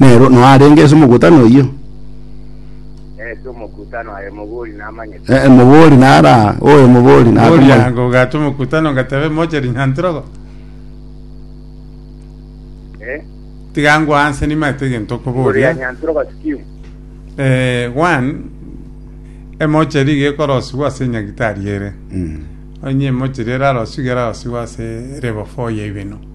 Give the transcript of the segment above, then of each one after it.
Nero noa arenge ase omogutano oyio? Eh, ase omokutano aye omobori namanyete. Eh, omobori nara oyo omobori Bori nakomanya. ango ogate omokutano ngatebe moche rinyantirogo. Eh, Tiga ngwa anse nimanyete egento igoro ya okoboria. Nyantirogo scheme. Eh, one, emocheri iga ekorosiwa ase enyagitari ere. Mm. Onye emocheri erarosiwa iga erarosiwa ase level four ya ibeno.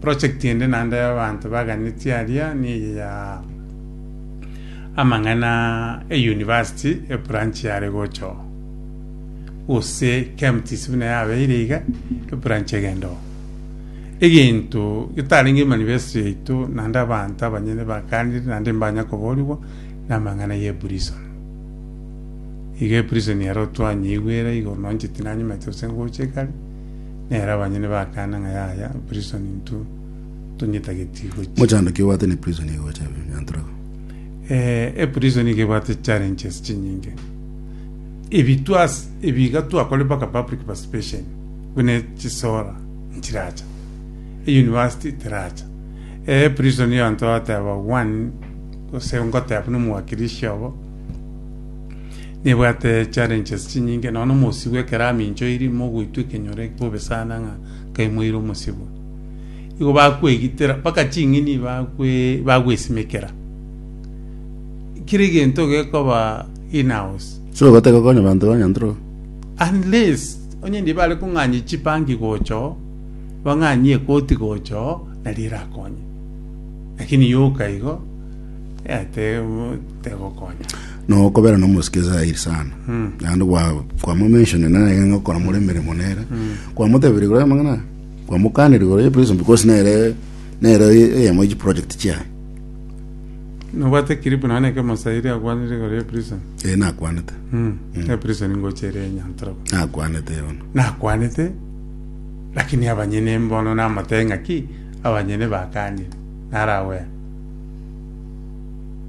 Project ende naende y'abanto baganetie aria neye ya amang'ana e university ebranch yare gocha oo. Gose KMTC buna yabeire iga ebranch egende oo. Egento getarenge manifesto yaito naende abanto abanyene bakanire naende mbanya koborigwa na amang'ana ye prison. Iga eprison ero twanyeigwera igoro nonche tinanyamete gose ngocha igare. Nere abanyene bakana ng'a yaya prison intwo tonyetageti gochia. Mochandaki obwate ne prison iga gocha Nyanturego. Eh, e prison iga ebwate challenges chinyinge. Ebi twas ebi iga twakore mpaka public participation bune chisora nchiracha. E university teracha. E prison yo anto ateba one gose ngoteba buna omwakilishi obo Nebwate challenges chinyinge nonya na omosibwa ekero aminchoiri mogoitwa ekenyoro eke bobe sana ng'a nkaimoire omosibwa. Igo bakwegitera mpaka ching'ini bakwe bagwesimekera. Kera egento gekoba in house So ogotaka okonye abanto ba Nyantrok? unless onye ndie bare kong'anya chibanki gocha oo, bang'anyie ekoti gocha oo nario erakonye. Lakini yoka igo eh, te- tegokonya. nokobera nomosike zairi sana naende gwa- kwamomensioni nere ng'a okora more emeremo nere kwamotebiri gore amang'ana kwamokaniri gore ye prison because nere nere eyemo ye chiproject chiaye nobwate kiripu naye neke mosairi akwanire igoro ya prison ee nakwanete Mm. ya prison ngochere enyantoro nakwanete yono nakwanete lakini abanyene mbono namotebia ng'a ki abanyene bakanire naragwera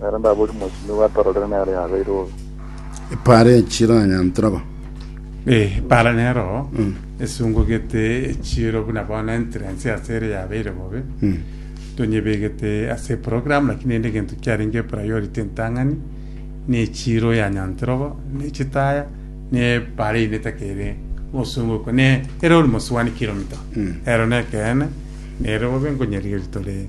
Nere ndabori mochie nigo atororire nere yabeire obe. Epaara echiranyantire aba. Eh, epaara nero esungugete echiiro buna bono entrance ase ere yabeire bobe. Tonyebegete ase eprogram naki nende egento kiarenge epriority entang'ani na echiiro yanyantire obo na echitaya na epaara eyinde etakere gosungukwa na ere ore mosubani kilomita. Ero nekeene nere bobe nkonyerigeria tore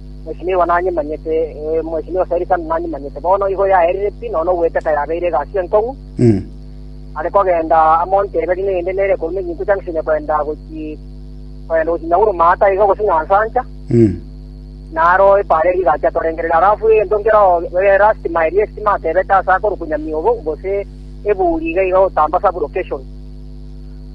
Mwesimiwa nanyimanyete, ee, Mwesimiwa Selisani nanyimanyete. Bono igo yaerire pi, nonya ogweteka yabeire egasi enkong'u. Are kogenda amo ntebe rinde rinde nere korwa Megintu Junction kogenda gochi- kogenda gochi Nyahururu maata iga gose Nyansancha, naro epaara eria rigacha torengerere. Alafu egento nkeroo eh, last mile y'estima atebete ase akorukunyamia obo, gose ebuuri iga iga otamba sub location.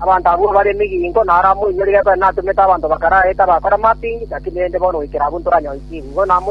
Abanto abwo mbare emigingo, na ara moinyore Gabere natomete abanto bakare aye tabakore amapingi, naki rende bono goikera abwo ntoranyoisie igurwa na moto,